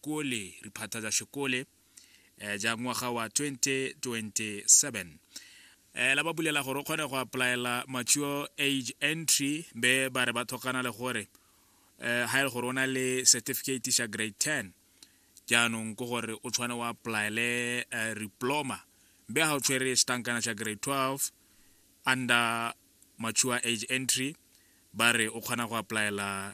kole riphata ja shekole eh, ja ngwaga wa 2027 eh, la ba bulela gore o kgone go applyela mature age entry be ba re ba thokana le gore eh, ha e le gore o na le certificate sa grade 10 jaanong ko gore o tshwane o applyele eh, diploma be ha o tshwere setankana sa grade 12 under mature age entry ba re o kgona go applyela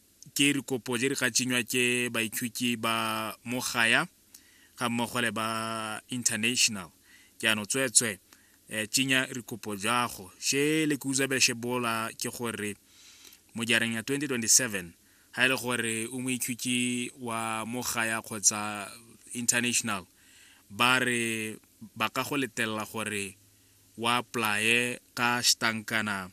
Ke dikopo je di ka tšenywa ke baithuti ba mo gaya ga mmogo le ba international jaanong tsweetswe um tšenya dikopo jago she le ke utswa bele shebola ke gore mo jareng ya 2027 ga e le gore o moithuti wa mo gaya kgotsa international ba re ba ka go letelela gore wa apply ka stankana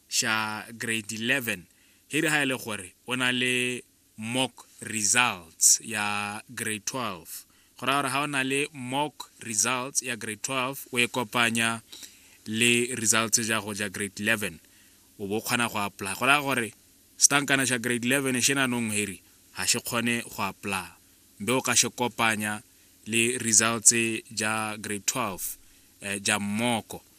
xa grade 11 he re ha e le gore o na le mock results ya grade 12 go raya gore ga o na le mock results ya grade 12 o e kopanya le results ja go ja grade 11 o bo kgona go apply go raya gore setankana xa grade 11 xe nanong heri ga xe kgone go apply mbe o ka xe kopanya le results ja grade 12 eh, ja mmoko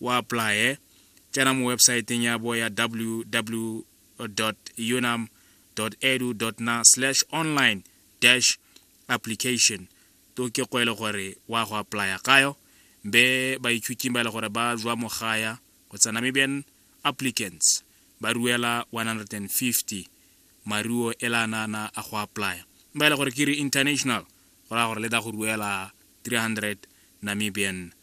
o apply-e tsena mo websaeteng ya bo ya www unam edu na slash online dash application to ke go e le gore wa go apply-a kayo be baithuting ba e le gore ba jwa mogaya go tsa namibian applicants ba ruela 150 maruo e la nana a go apply-a ba e le gore ke re international go raya gore le da go ruela 300 namibian